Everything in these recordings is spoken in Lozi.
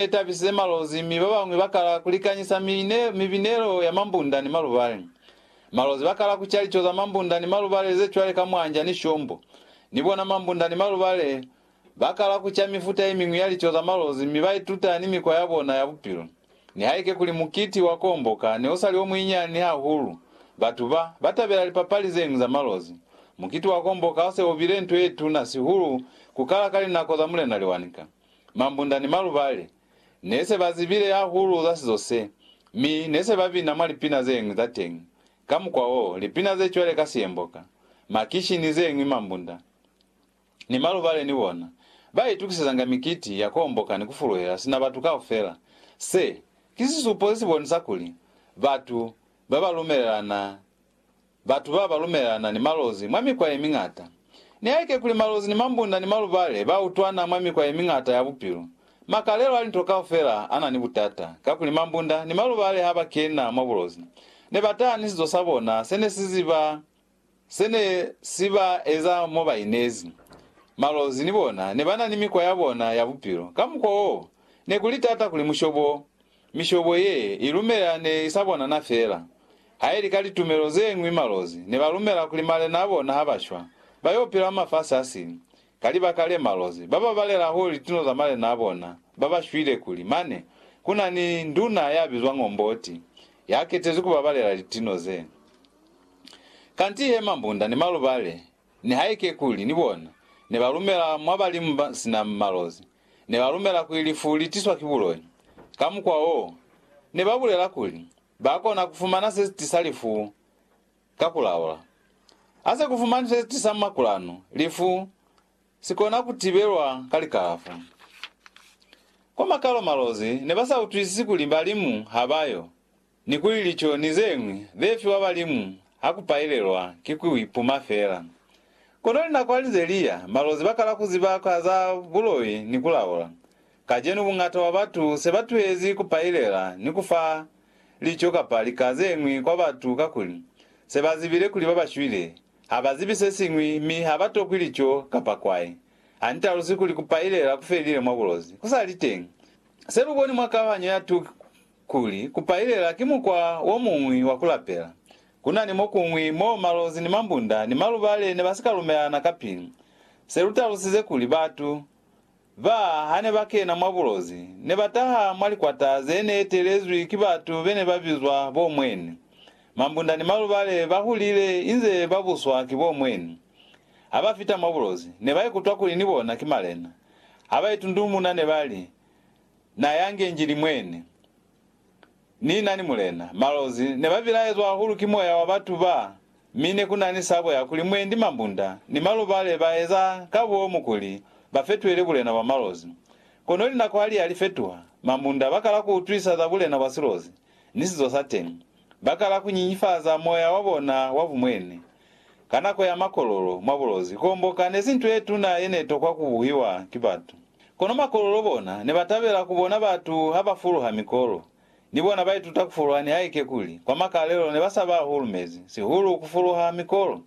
ne tabisize malozi mi ba bañwi ba kala ku likanyisa mibinelo ya mambunda ni malubale. Malozi ba kala ku ca lico za mambunda ni malubale ze cwale ka mwanja ni shombo. Ni bona mambunda ni malubale ba kala ku ca mifuta ye miñwi ya lico za malozi mi ba ituta ni mikwa ya bona ya bupilo. Nihaike kuli mukiti wa Kuomboka ne u sa li o munyinyani hahulu, batu ba ba tabela lipapali ze ñwi za malozi. Mukiti wa Kuomboka u se u bile nto ye tuna sihulu ku kala ka linako za Mulena Lewanika. Mambunda ni malubali ne se ba zibile hahulu za sizo se, mi ne se ba bina mwa lipina ze ñwi za teñi. Ka mukwa wo, lipina ze cwale ka Siyemboka, Makishi ni ze ñwi mambunda ni malubali ni bona ba itukisezanga mikiti ya ku homboka ni ku fuluhela sina batu kaufela. Se, ki sisupo se si bonisa kuli batu ba ba lumelelana Batu ba ba lumelana ni malozi mwa mikwa ye miñata. Nihaike kuli malozi ni mambunda ni malubale ba utwana mwa mikwa ye miñata ya bupilo, makalelo a linto kaufela a na ni butata, kakuli mambunda ni malubale ha ba kena mwa bulozi, ne ba taha ni sizo sa bona se ne si ziba se ne si ba eza mo ba inezi. Malozi ni bona ne ba na ni mikwa ya bona ya bupilo. Ka mukwa wo, ne ku li tata kuli mushobo Mishobo ye i lumela ne i sa bonana feela. Ha i li ka litumelo ze ñwi malozi ne ba lumela kuli malena a bona ha ba shwa, ba y'o pila mwa mafasi a sili. Ka libaka le, malozi ba ba balela hahulu lituno za malena a bona ba ba shwile kuli mane ku na ni nduna ya bizwang Omboti ya ketezwi ku babalela lituno ze. Kanti he mambunda ni malubale Nihaike kuli ni bona ne ba lumela mwa balimu ba sina malozi, ne ba lumela kuli lifu li tiswa ki buloi. Ka mukwa wo, ne ba bulela kuli ba kona ku fumana se si tisa lifu ka ku laula. Ha se ku fumanwi se si tisa makulanu, lifu si kona ku tibelwa ka likalafo. Kwa makalo malozi ne ba sa utwisisi kuli balimu ha ba yo. Ni kuli lico ni zeñwi ze fiwa balimu ha ku pailelwa ki ku ipuma fela. Kono linako ha li ze li ya, malozi ba kala ku ziba ka za buloi ni ku laula. Kacenu bungata bwa batu se ba tuhezi ku pailela ni ku fa lico kapa lika zeñwi kwa batu kakuli se ba zibile kuli ba ba shwile ha ba zibi se siñwi mi ha ba tokwi lico kapa kwai. Ha ni talusi kuli ku pailela ku felile mwa bulozi ku sa li teñi. Se lu boni mwa kauhanyo ya 2 Kuli kupailela ki mukwa wo muñwi wa ku lapela. Ku na ni mo kuñwi mo malozi ni mambunda ni malubale ne ba si ka lumelana ka pilu. Se lu talusize kuli batu ba ha ne ba kena mwa bulozi ne ba taha mwa likwata ze ne etelezwi ki batu be ne ba bizwa bo mweni. Mambunda ni malubale ba hulile inze ba buswa ki bo mweni. Ha ba fita mwa bulozi, ne ba ikutwa kuli ni bona ki malena. Ha ba itundumuna ne ba li, Na yange Njili mwene. Ni nani mulena. Malozi ne ba bilaezwa hahulu ki moya wa batu ba, mi ne ku nani sabo ya kuli mwendi mambunda ni malubale ba eza ka bomu kuli ba fetuele bulena bwa malozi. Kono linako ha li ya li fetuha, mambunda ba kala ku utwisa za bulena bwa silozi ni sizo sa teñi. Ba kala ku nyinyifaza moya wa bona wa bumwene. Ka nako ya makololo mwa bulozi, kuomboka nezi nto yetuna yenetokwa kubuhiwa ki batu. Kono makololo bona nebatabela kubona batu habafuluha mikolo. Ni bona baituta kufuluha nihaike kuli kwa makalelo nebasaba hahulu mezi, sihulu kufuluha mikolo.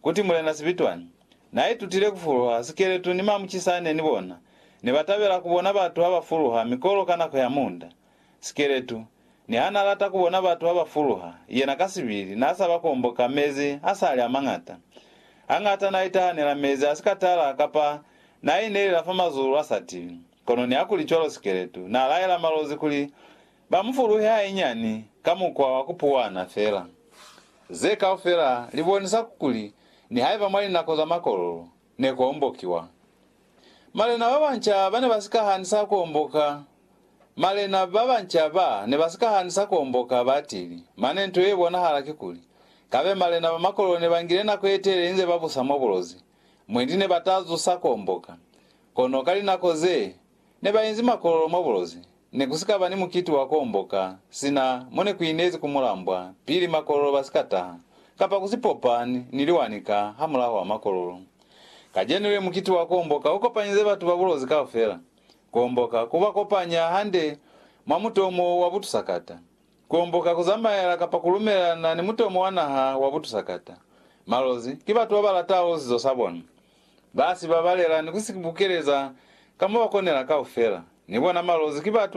Kuti Mulena Sibitwani naaitutile kufuluha sikeletu ni mamucisane ni bona nebatabela kubona batu habafuluha mikolo ka nako ya munda. Sikeletu, niha n'a lata ku bona batu ha ba fuluha, yena ka sibili n'a sa ba komboka mezi a sa li a mañata. Hañata n'a itahanela mezi a si ka tala kapa n'a inelela fa mazulu a sa tibi. Kono nihakulicwalo Sikeletu n'a laela Malozi kuli ba mu fuluhe hainyiani ka mukwa wa ku puwana fela. Ze kaufela li bonisa kuli nihaiba mwa linako za makololo, ne ku ombokiwa. Malena ba banca ba ne ba si ka hanisa ku omboka. Malena ba banca ba ne ba si ka hanisa ku omboka batili, mane nto ye bonahala kikuli, kabe malena ba makolelo ne ba ngile nako ye telele inze ba busa mwa bulozi, mwendi ne ba ta zusa ku omboka. Kono ka linako ze Ne ba inzi makololo mwa bulozi. Ne ku si ka ba ni mukiti wa ku omboka sina mo ne ku inezi ku mulambwa pili makololo ba si ka taha, kapa ku si popa ni, ni liwani ka hamulaho wa makololo. Kacenu le mukiti wa ku omboka u kopanyize batu ba bulozi kaufela. Ku omboka ku ba kopanya hande mwa mutomo wa butusakata. Ku omboka ku zamaela kapa ku lumelelana ni mutomo wa naha wa butusakata. Malozi ki batu ba ba lataho sizo sa bona. Ba si babalela ni ku si bukeleza ka mo ba konela kaufela. Ni bona malozi ki batu